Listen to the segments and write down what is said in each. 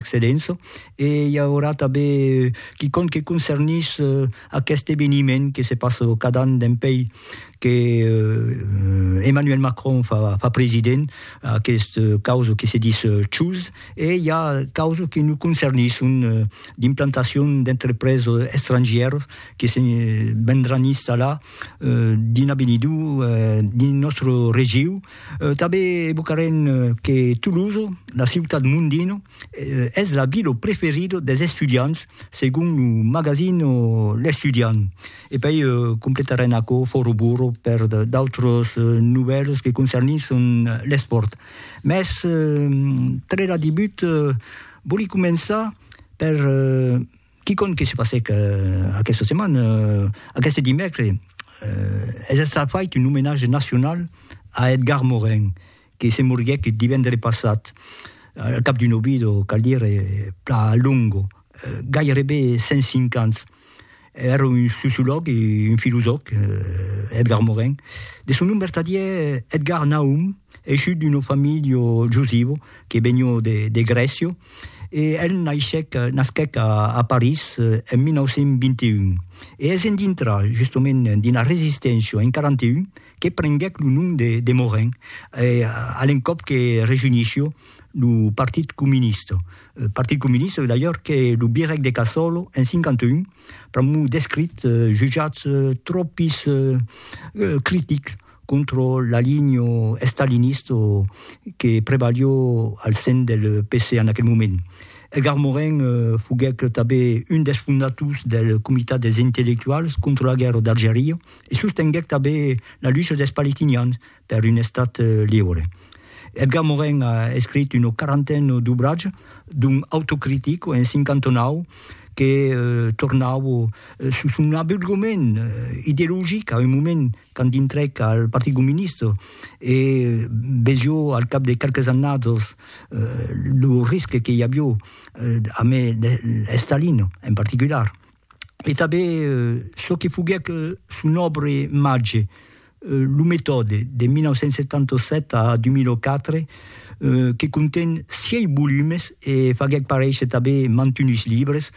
Excellença, e i aurà tanben quicòm que concernís aqueste eveniment que se passa cada an dempèi que Emmanuel Macron fa president, aqueste causa que se dis Choose, e i a causa que nos concernisson d'implantacion d'entrepreses estrangièras que se vendràn installar dins l'avenidor dins nòstre region. Tanben evocarem que Toulouse, la ciutat mondina, es la vila preferida dels estudiants segon lo magazin L'Estudiant. E puèi completarem aquò fòra burro per d'autras novèlas que concernisson l'espòrt. Mès tre la debut vòli començar per Quicòm que se passèc aquesta setmana, aqueste dimècres, es estat fait un omenatge nacional a Edgar Morin, que se moriguèc divendres passat, al cap d'un obido, cal dire, plan longo, gairebe 105 ans. Èra un sociològ e un filosòf, Edgar Morin. De son nom vertadièr, Edgar Nahum, eishut d'una familha josiva que venió de Grècia, E el naishèc, nasquèc a París en 1921, e es en dintrar justement d'una resisténcia en 41 que prenguèc lo nom de Morin, a l'encòp que rejunishió lo Partit Comunista. Partit Comunista d'ailleurs que lo Birèc de Cassòlo en 51 pr'amor d'escrits jutjats tròpis critics. contra l'alinho estalinista que prevalió al sen del PC en aquel moment. Edgar Morin foguèc tanben un dels fondators del Comitat dels Intellectuals contra la guèrra d'Algeria e sostenguèc tanben la lucha dels palestinians per un estat liure. Edgar Morin a escrich una quarantena d'obratges, dont Autocritic en 59, que tornava sus son abeuglement ideologic a un moment quand dintrèc al Partit Comunista e vejo al cap de qualques annadas lo risque que i avió amb Stalin en particular, e tanben çò que foguèc son òbra màger, lo Metòde, de 1977 a 2004, que conten sièis volumes e faguèc paréisser tanben mantunhs libres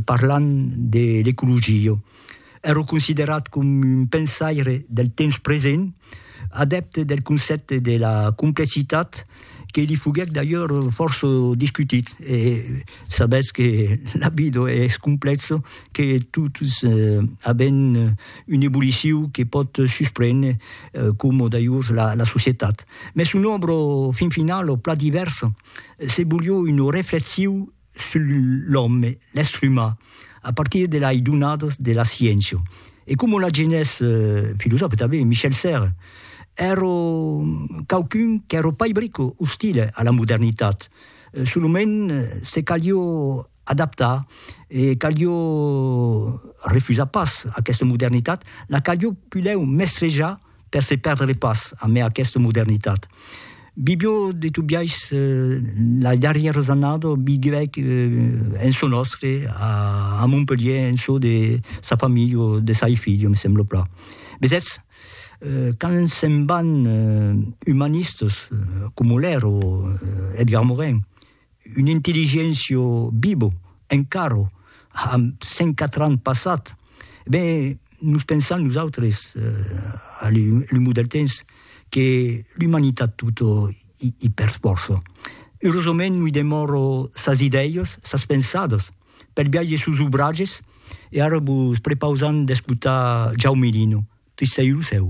parlant de l'ecologia. Èro considerat com un pensaire del temps present, adèpte del concèpte de la complexitat que li foguèc d'ailleurs fòrça discutit. E sabètz que la vida es complèxa, que totes avèm una evolucion que pòt susprene, coma d'ailleurs la societat. Mès son òbra, fin finala, plan divèrsa, se volió una reflexion sul l'òme, l'èstre umà, a partir de lai donadas de la sciéncia. E coma l'agenés filosòfe tanben Michel Serres, èro quauqu'un qu'èro pas brico ostile a la modernitat, solament se calió adaptar e calió refusar pas aquesta modernitat, la calió pulèu mestrejar Per se perdre pas amé aquesta modernitat. Bibio de Tobiais la darrièra zannada biguèc en çò nòstre a Montpelhier en çò de sa familha o de sai filha, me sembla plan. Vesètz, quand se'n van umanistas coma Lèra o Edgar Morin, Un intelligentio bibo, encaro, amb 104 ans passat, ben, nos pensam nosautres, a l'umor del temps, que l'umanitat tota i per sforço. Eurosament noi demòro sas idèias, sas pensadas, per biais de sos obratges, e ara vos prepausam d'escotar Jaume Lino, Tristèiru cèu.